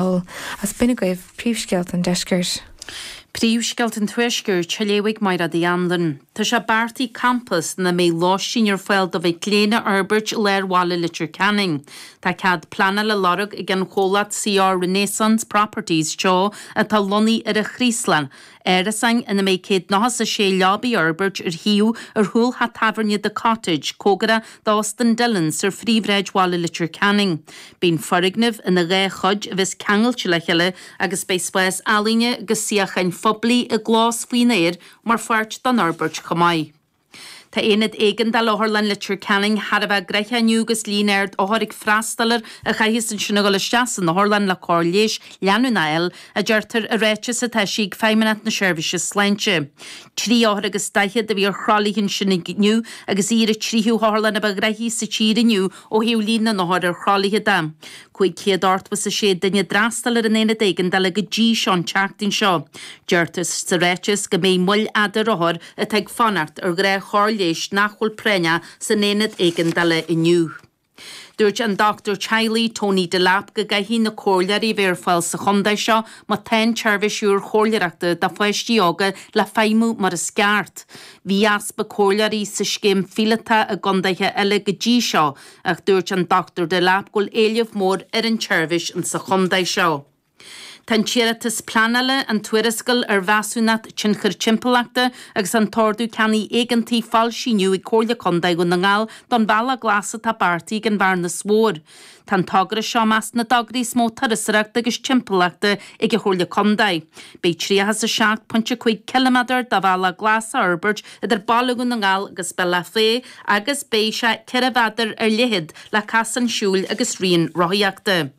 Ball, is b'in agaibh, Príomhscéalta an Deiscirt. Príomhscéalta an Tuaiscirt, á léamh ag Mairéad Uí Anluain. Tá sé beartaithe campas ina mbeidh lóistín ar fáil do mhic léinn a fhorbairt i lár bhaile Leitir Ceanainn. Tá cead pleanála á lorg ag an chomhlacht CR Renaissance Properties Teo atá lonnaithe ar an Chraoslach Árasáin ina mbeidh céad nócha is a sé leaba a fhorbairt ar shuíomh ar chúl theach tábhairne The Cottage, cóngarach d'Óstán Dillons ar phríomhshráid bhaile Leitir Ceanainn. Beidh an foirgneamh ina dhá chuid a bheas ceangailte le chéile agus beidh spás ealaíne agus suíocháin phoiblí i gclós faoin aer mar pháirt den fhorbairt chomh maith. Tá Aonad Éigeandála Otharlann Leitir Ceanainn thar a bheith gnoitheach inniu agus líon ard othar ag freastal air a chaithfeas ansin a dhul isteach san otharlann le cóir leighis leanúnach a fháil, a deirtear i ráiteas atá eisithe ag Feidhmeannacht na Seirbhíse Sláinte. Trí othar agus daichead a bhí ar thralaithe ansin inniu agus í ar an tríú hotharlann a ba ghnoithí sa tír inniu ó thaobh líon na n-othar ar thralaithe de. 586 duine a d'fhreastail ar an Aonad Éigeandála go dtí seo an tseachtain seo. Deirtear sa ráiteas go mbeidh moill fhada ar othair atá ag fanacht ar ghnáthchóir leighis nach bhfuil práinneach san Aonad Éigeandála inniu. Dúirt an Dochtúir Teaghlaigh Tony Delap go gcaithfidh na comhairleoirí a bheith ar fáil sa chontae seo má tá an tseirbhís úr chomhairleoireachta do pháistí óga le feidhmiú mar is ceart. Bhí easpa comhairleoirí sa scéim phíolótach i gcontaetha eile go dtí seo, Ach dúirt an Dr Delap go bhfuil éileamh mór ar an tseirbhís sa chontae seo. Tá an t-iarratas pleanála, an tuarascáil ar Mheasúnacht Tionchair Timpeallachta agus an tOrdú Ceannaigh Éigeantaigh foilsithe inniu ag Comhairle Contae Dhún na nGall don Bhealach Glas atá beartaithe ag an Bhearnas Mhór. Tá an togra seo i measc na dtograí is mó turasóireachta agus timpeallachta ag an Chomhairle Contae. Beidh tríocha is a seacht pointe cúig ciliméadar de bhealach glas á fhorbairt idir Baile Dhún na nGall agus Bealach Féich agus beidh sé 4 mhéadar ar leithead le casán siúil agus rian rothaíochta.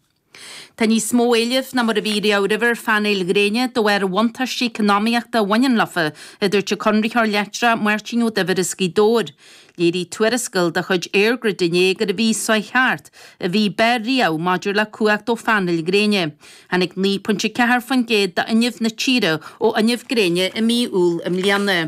Tá níos mó éilimh ná mar a bhí riamh roimhe ar phainéil ghréine de bharr bhuntáistí eacnamaíochta a bhaineann leofa, a dúirt an Conraitheoir Leictreach Máirtín Ó Duibhir as Gaoth Dobhair. Léirigh tuarascáil de chuid EirGrid inné gurbh í an mhí seo chuaigh thart an mhí ab fhearr riamh maidir le cumhacht ó phainéil ghréine. Tháinig 9.4% d'fhuinneamh na tíre ó fhuinneamh gréine i mí Iúil i mbliana.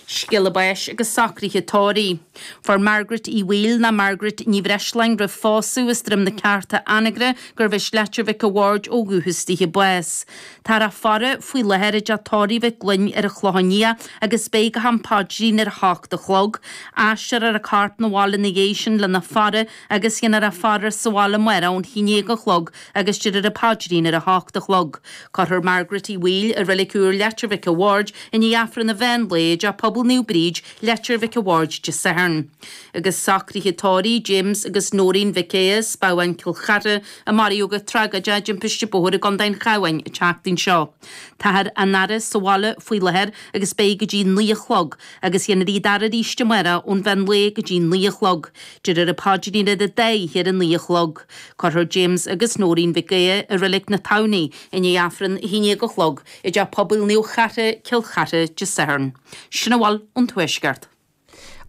Scéala báis agus socruithe tórraimh. Fuair Margaret Uí Bhaoill nó Margaret Ní Bhreisleáin roimh phósadh as Droim na Ceárta, Anagaire, gurbh as Leitir Mhic a' Bhaird ó dhúchas di, bás. Táthar á faire faoi láthair i dteach tórraimh Mhic Fhloinn ar an Chlochán Liath agus beidh go ham paidrín ar a hocht a chlog. Aistreofar a corp 'na bhaile ina dhiaidh sin lena faire agus déanfar í a fhaire sa bhaile amárach ón haon déag a chlog agus déarfar an paidrín ar a hocht a chlog. Cuirfear Margaret Uí Bhaoill i Reilig Úr Leitir Mhic an Bhaird i ndiaidh Aifreann an mheán lae i dTeach Pobail Naomh Bríd, Leitir Mhic an Bhaird Dé Sathairn. Agus socruithe tórraimh James agus Noreen Mhic Aodha, as Bábhún, Cill Chartha, a maraíodh go tragóideach i dtimpiste bóthair i gContae an Chabháin an tseachtain seo. Táthar á n-aire sa bhaile faoi láthair agus beidh go dtí naoi a chlog, agus déanfar iad a fhaire arís amárach ón mheán lae go dtí naoi a chlog. Déarfar an paidrín ar an dá oíche ar a naoi a chlog. Cuirfear James agus Nóirín Mhic Aodha i Reilig na Tamhnaí i ndiaidh Aifreann a haon dhéag a chlog i dTeach Pobail Naomh Chartha, Cill Chartha, Dé Sathairn. Sin a bhfuil ón Tuaisceart.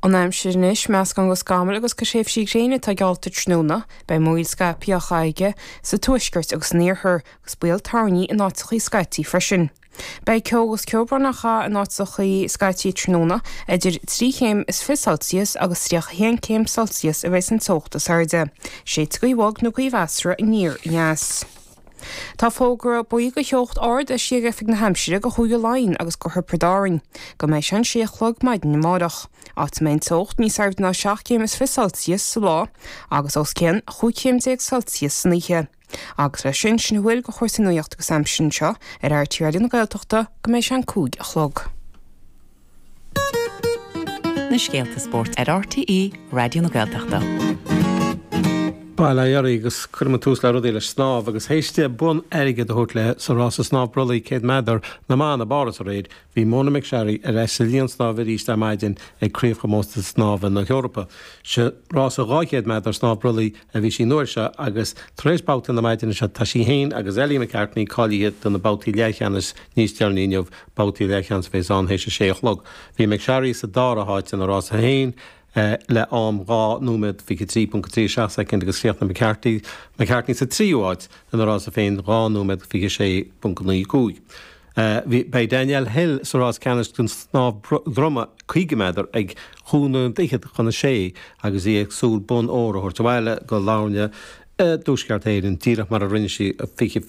An aimsir anois, meascán go scamaill agus go thréimhsí gréine atá geallta tráthnóna. Beidh múraíl scaipthe á chaitheamh aige sa tuaisceart agus san iarthar, agus baol toirní in áiteachaí scaití freisin. Beidh ceo agus ceobhrán á chaitheamh in áiteachaí scaití tráthnóna, idir trí chéim is fiche Celsius agus 31 céim Celsius a bheidh san teocht is airde. Séidfidh gaoth bhog nó gaoth mheasartha aniar aneas. Tá fógra buí go theocht ard eisithe ag Oifig na hAimsire go Chúige Laighean agus go Thiobraid Árainn go mbeidh sé an sé a chlog maidin amárach, áit a mbeidh an teocht níos airde ná seacht gcéim is fiche Celsius sa lá agus os cionn chúig chéim déag Celsius san oíche. Agus leis sin, sin a bhfuil do chúrsaí nuacht agus aimsire anseo ar RTÉ Raidió na Gaeltachta go mbeidh sé an cúig a chlog. na scéalta spóirt ar RTÉ Raidió na Gaeltachta. Bail ó Dhia oraibh agus cuireann muid tús le rudaí le snámh agus théis di bonn airgid a thabhairt léi sa rása snámh brollaigh 100 méadar na mban i bPáras aréir, bhí Mona McSharry ar ais sa linn snámha arís ar maidin ag Craobhchomórtas Snámha na hEorpa. Sa rása 200 méadar snámh brollaigh a bhí sí an uair seo agus tar éis babhta na maidine seo tá sí féin agus Ellie McCartney cáilithe do na babhtaí leathcheannais níos deireanaí inniu. Babhtaí leathcheannais a bheas ann théis a sé a chlog. Bhí McSharry sa dara háit ina rása féin le am 2 nóiméad, 23.37 soicind agus chríochnaigh McCartney sa tríú háit ina rása féin 2 nóiméad, 26.95. Beidh Danielle Hill sa rás ceannais don snámh droma 50 méadar ag cúig nóiméad fichead chun a sé agus í ag súil bonn óir a thabhairt abhaile go Latharna i dTuaisceart Éireann, díreach mar a rinne sí 20